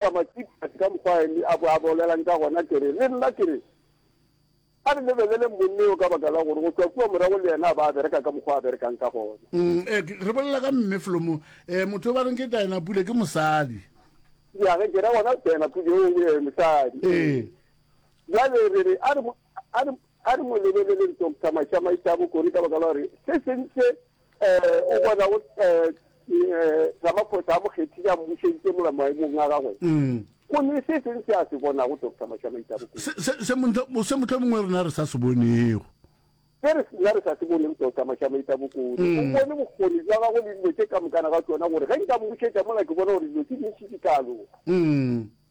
Ka matšiphatši ka mokgwa a ile a bo a bolelang ka gona, ke re, Le nna ke re, A re lebeleleng monna yo ka baka la gore go tšwa kua morago le yena a ba a bereka ka mokgwa a berekang ka gona. Ee, re bolela ka Mme Flomo. Ee, motho yo ba reng ke Diana Pule ke mosadi. Ya ge ke ra gona Diana Pule yo e be mosadi. Ee. Bjale re re, a re, a re, a re mo lebeleleng Doctor Mašamaitabo Kori ka baka la gore se sentše O bona go Ramaphosa a mo kgethile a mmušeditše mola maemong a gagwe go ne se seng se a se bonago Doctor Mashamaitse a bokone se motlho mongwe rena re sa se bonego se re sena re sa se bonego Doctor Mashamaitse a bokone o bone bokgoni jwa gagwe le dilo tše ka mokana ga tsona gore ge nka mmušetša mola ke bona gore dilo tse dintšhi di ka loka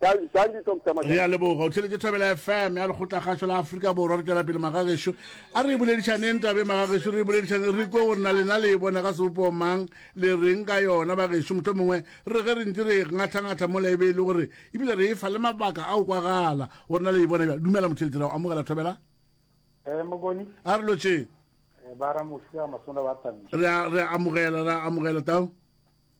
re a leboga o tlheletše thabela fm ya lekgotlakgašo la aforika borwa re tšwela pele magagešo a re e boledišaneng tabe magagešo re e boledišaneng re kwe gore na lena le e bona ka sebopoo mang le reng ka yona bagešo motlho mongwe re ge re ntse re ngatlhangatlha mo laibe e le gore ebile re e fa le mabaka a o kwagala gore na le e bona bja dumela motheletši ra go amogela thobela eh, a re lotšeng eh, re amogela re amogela tao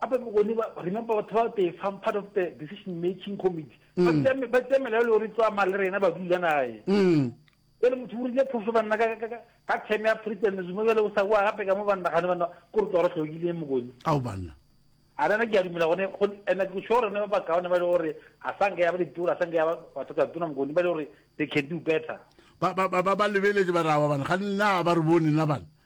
Gape bone ba, remember batho ba they form part of the decision making committee. Ba mm. tsea ba tsea melao le gore tswa mali rena ba dula nae. Mm. Ele motho o rile phoso banna ka ka ka theme ya President Zuma bjale o sa wa gape ka mo banna gane banna ko re tswa re hlokile mokone. Ao banna. A rena ke a dumela gone go ena ke sure rena ba bakaone ba le gore a sa nke ya ba ditoro a sa nke ya ba batho ka tona mokone ba le gore they can do better. Ba ba ba ba lebeletse ba ra wa bana ga nna ba re bone na bana.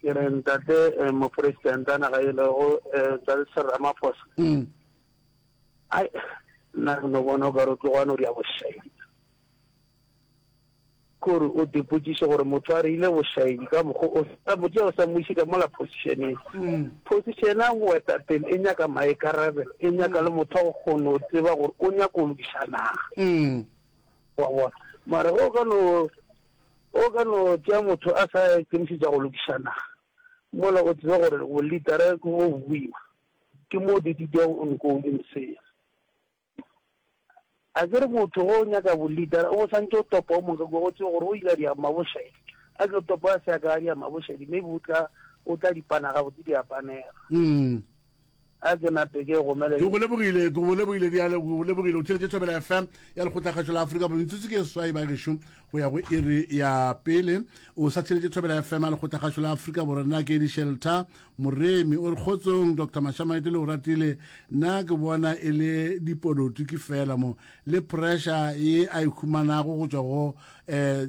ke re ntate eh, moporesidente a naga elego eh, tsatsi ramaphosa mm. ai nna re no bona o ka re tlogwane o di ya bošaedi kore o dipotsiše gore motho a re ile bošaedi ka mokgo o sa botse o sa moise ka mola positioneng mm. position a boetapele e nyaka maekarabe e nyaka le motho a go kgone o tseba gore o nyaka o lokiša naga mm. wa bona mara o ka no O ka no tšea motho a sa ikemišetša go lokiša naga, mola o tseba gore bolitara ke bo boima. Ke mo didi di yago nkong e mosea. A ke re motho ge o nyaka bolitara o bo swantše o topa o mongwe ka kua, o tsebe gore o ile a di ama bošedi. A ke o topa a se a ka a di ama bošedi, maybe o tla, o tla di pana gabotse, di a panega. a ke nape ke gomele ke go lebogile ke go lebogile bjale ke go lebogile o theletše thobela fm ya lekgotlakgašo la aforika borwa metsotso ke swai ba gešo go ya go iri ya pele o sa theletše thobela fm ya lekgotlakgašo la aforika borwa nna ke dishelter moremi o re kgotsong dr mashamaete le o ratile nna ke bona e le dipolotiki fela mo le pressure ye a e humanago go tswa go um eh,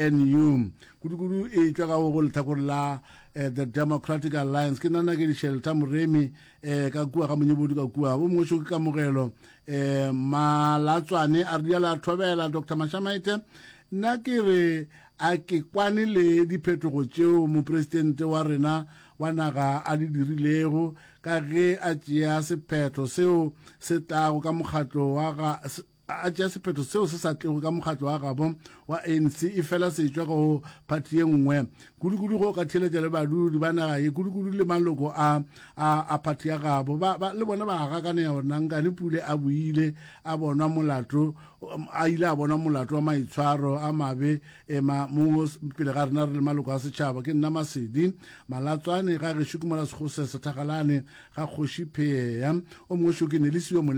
gnu kudu-kudu e tšwa ka go letlhakoreng la eh, the democratic alliance ke nana ke dishelta moremi eh, ka kua ga monyebodi ka kua bo mongweso ke kamogelo eh, malatswane a re diala a thobela dr mashamaite nna ke re a ke kwane le diphetogo tšeo mopresidente wa rena wa naga a di dirilego ka ge a tšea sephetho seo se tlago ka mokgatlo wa ga a a tšea sephetho seo se sa tlego ka mokgatlo wa gabo wa ANC e fela se tšwa go phathi ye nngwe kudu-kudu go ka theletša le badudi ba naga ye kudu-kudu le maloko a a a phathi ya gabo ba ba le bona ba gakaneya gore nankane pule a buile a bonwa molato a ile a bonwa molato wa maitshwaro a mabe ema mo pele ga rena re le maloko a setšhaba ke nna masedi malatswane ga gešo ke mola segose sethagalane ga kgoši pheya o mongwe šo ke nelisiwe mole